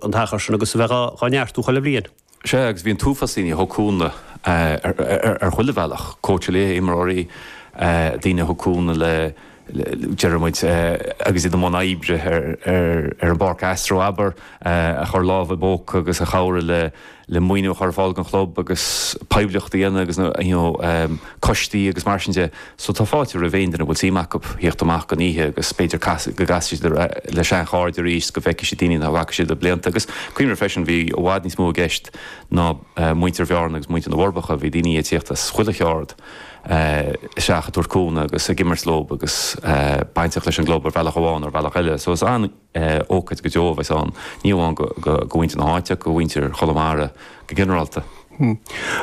an t-achar sin agus a bheith dhá neartú chuile bhliain. Sea, agus bhí an t-uafás daoine a thug cúnamh ar chuile bhealach, cóitseálaithe, imreoirí, daoine a thug cúnamh le, deireadh muid, agus iad i mbun oibre ar an bpáirc astro, abair, a chuir lámh i bpóca agus a chabhraigh le le maoiniú a chur ar fáil don chlub agus poiblíocht a dhéanamh agus na you know coistí agus mar sin de so tá fáilte roimh aon duine a bhfuil suim acu a thíocht amach don oíche agus b'fhéidir casfaidh, go gcasfaidh siad le seanchairde arís 's go bhfeicfidh siad daoine nach bhfaca siad le blianta agus cuimhnigh freisin bhí i bhfad níos mó i gceist ná muintir Bhearna agus muintir na bhForbacha bhí daoine ag tíocht as chuile cheard isteach ag tabhairt cúnamh agus ag imirt leo agus bainteach leis an gclub ar bhealach amháin nó ar bhealach eile so is an Ócáid go deo a bheas ann, ní amháin do mhuintir na háite ach do mhuintir Chonamara go ginearálta.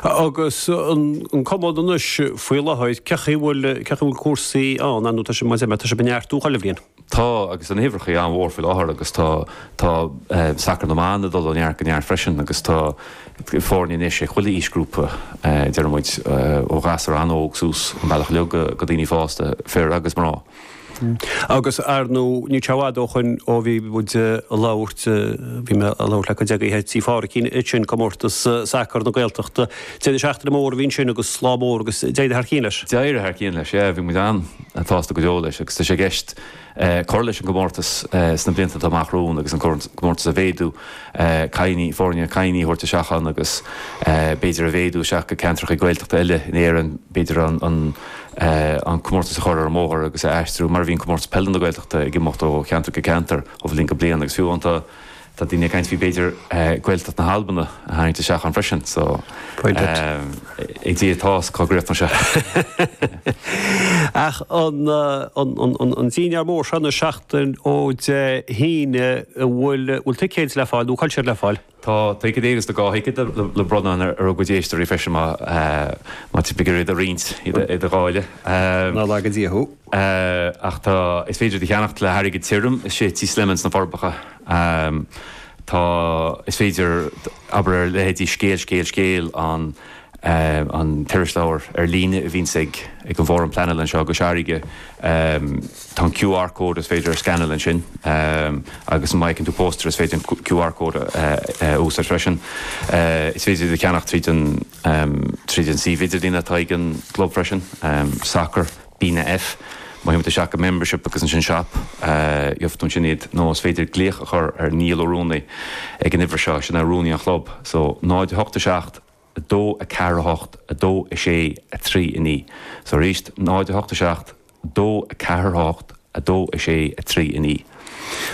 Agus an Cumann anois faoi láthair, cén chaoi a bhfuil cúrsaí ann? Ar ndóigh, tá sé, mar a deir mé, tá sé ag neartú chuile bhliain. Tá, agus tá na huimhreacha an-mhór faoi láthair agus tá sacar na mban ag dul ó neart go neart freisin agus tá foirne anois ag chuile aoisghrúpa, deir muid, ó ghasúr an-óg suas an bealach go daoine fásta, fir agus mná. Agus ar ndú, ní an-fhada ó shoin ó bhí muid a' labhairt, bhí mé a' labhairt le cuid agaibh ag Tí Phádraicín, faoi sin, Comórtas Sacar na Gaeltachta, deireadh seachtaine mór a bhí ansin agus lá mór agus d'éirigh thar cionn leis. D'éirigh thar cionn leis, yeah, bhí muid an-tsásta go deo leis agus tá sé i gceist cur leis an gcomórtas sna blianta atá amach romhainn agus an comórtas a mhéadú Cailíní, foirne cailíní a thabhairt isteach ann agus b'fhéidir a mhéadú isteach go ceantracha Gaeltachta eile in Éirinn, b'fhéidir an comórtas a chur ar an mbóthar agus a aistriú mar a bhíonn comórtas peile na Gaeltachta ag imeacht ó cheantar go ceantar ó bhliain go bliain agus fiú amháin tá daoine ag caint faoi b'fhéidir Gaeltacht na hAlban a tharraingt isteach ann freisin so, ag Dia atá a fhios cá gcríochnóidh sé seo? Ach an dinnéar mór seo seachtain ó Dé hAoine, bhfuil ticéid le fáil nó cá bhfuil siad le fáil? Tá ticéid agus tá dhá thicéad le bronnadh ar do chuid éisteoirí freisin má tá tú ag iarraidh iad a roinnt, iad a dháileadh. Nár laga Dia thú! Eh, ach tá, is féidir iad a cheannacht le hairgead tirim, i siopa Tí Slimane sna Forbacha. Ehm, tá, is féidir, abair ar leithéidí Scéal, Scéal, Scéal, an, eh, an t-irisleabhar ar líne a bhíonns ag, ag an bhFóram Pleanála anseo i gCois Fharraige, ehm, tá an QR code is féidir a scanáil ansin, ehm, agus má fheiceann tú poster is féidir an QR code a, eh, a úsáid freisin. Eh, is féidir iad a cheannacht tríd an, ehm, tríd an suíomh idirlín atá ag an gClub freisin, ehm, sacar. BnaF, má théann tú isteach go membership agus ansin shop, gheobhaidh tú ansin iad nó is féidir glaoch a chur ar Neil Ó Rúnaí ag an uimhir seo, sin é Rúnaí an Chlub, so 087 248 263 9, so arís 087 248 2, 6, 3, 9,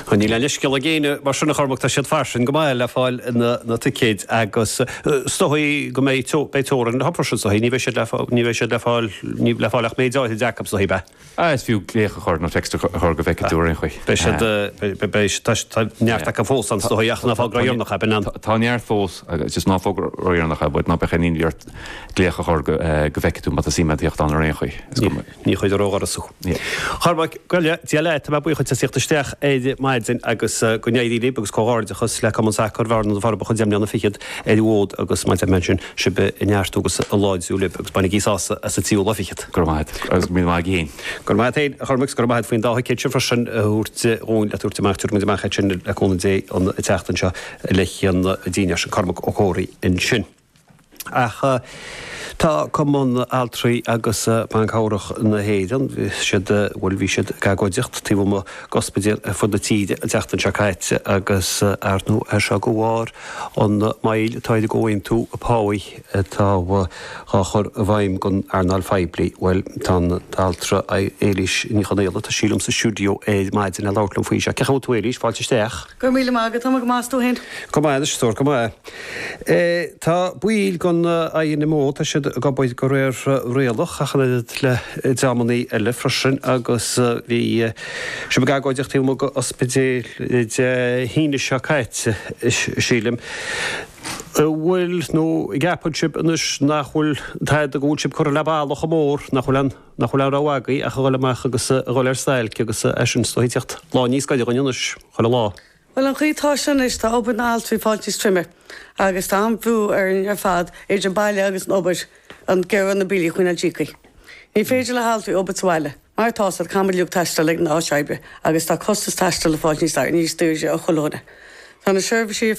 Ó níl aon leithscéal ag éinne mar sin a Chormac, tá siad fairsing go maith le fáil na ticéid agus is dóigh go mbeidh, beidh teorainn leob ar ndóigh ansin ní bheidh siad le fáil, ní bheidh siad le fáil, ní, le fáil ach méid áirid acu is dóigh, beidh. Ah is fiú glaoch a chur nó text a chur go bhfeicfidh tú ar aon chaoi. Beidh siad, beidh, beidh, tá, tá neart acu fós ann is dóigh ach ná fág ró dheireanach é, beidh an. Tá neart fós agus just ná fág ró dheireanach é but ná beadh aon imní ort glaoch a chur go bhfeicfidh tú má tá suim a't a thíocht ann ar aon chaoi. Ní chuirtear ó dhoras thú. Chormaic, bail ó Dhia ort, tá mé buíoch as teacht isteach ar maidin agus go n-éirí libh agus comhghairdeachas le Cumann Sacair Bhearna-Na Forbacha deich mbliana fichead ar an bhfód agus go mba fada an lá sibh ag neartú agus ag láidriú libh agus bainigí sásamh as an tríú lá fichead. Go raibh maith a't agus go raibh maith agat féin. Go raibh maith a't féin, a Chormaic, is go raibh maith a't faoin dá thicéad sin freisin a thabhairt dhúinn le tabhairt amach, tiocfaidh muid amach ansin le cúnamh Dé an tseachtain seo le haghaidh daoine eicínt. Cormac Ó Comhraí ansin. Ach tá Cumann Altraí agus Ban Cabhrach na hÉireann, bhí siad, bhuel, bhí siad ag agóidíocht taobh amuigh d'ospidéil ar fud na tíre an tseachtain seo caite agus ar ndóigh seo de bharr an moill atá ar an gcomhaontú páí atá dhá chur i bhfeidhm don earnáil phoiblí. Bhuel, tá an t-altra Éilís Ní Chonaola, tá sí liom sa stiúideo ar maidin le labhairt liom faoi seo. Cén chaoi a bhfuil tú Éilís? Fáilte isteach. Go raibh míle maith agat, tá mé go maith, 's tú fhéin? Go maith anois, stór, go maith. Tá baill den INMO, tá siad ag obair de réir rialach ach an oiread le dreamannaí eile freisin agus bhí sibh ag agóidíocht taobh amuigh den ospidéal Dé hAoine seo caite, sílim. An bhfuil, nó an gceapann sibh anois nach bhfuil, an bhfuil sibh curtha le balla chomh mór nach bhfuil an. nach bhfuil aon rogha againn ach a dhul amach agus a dhul ar stailc agus tá sé sin is dóigh ag tíocht lá níos gaire dhuinn anois chuile lá. Bhuel, an chaoi atá seo anois, tá obair na n-altraí fáilte níos troime agus tá an-bhrú orainn ar fad, idir an baile agus an obair, ag iarraidh na billí a choinneáil íoctha. Ní féidir le haltraí obair sa bhaile, mar atá a fhios a'd, caithfidh muid uilig taisteal ag an áit oibre agus tá costas taistil ag fáilt níos daoire do chuile dhuine. Tá na seirbhísí.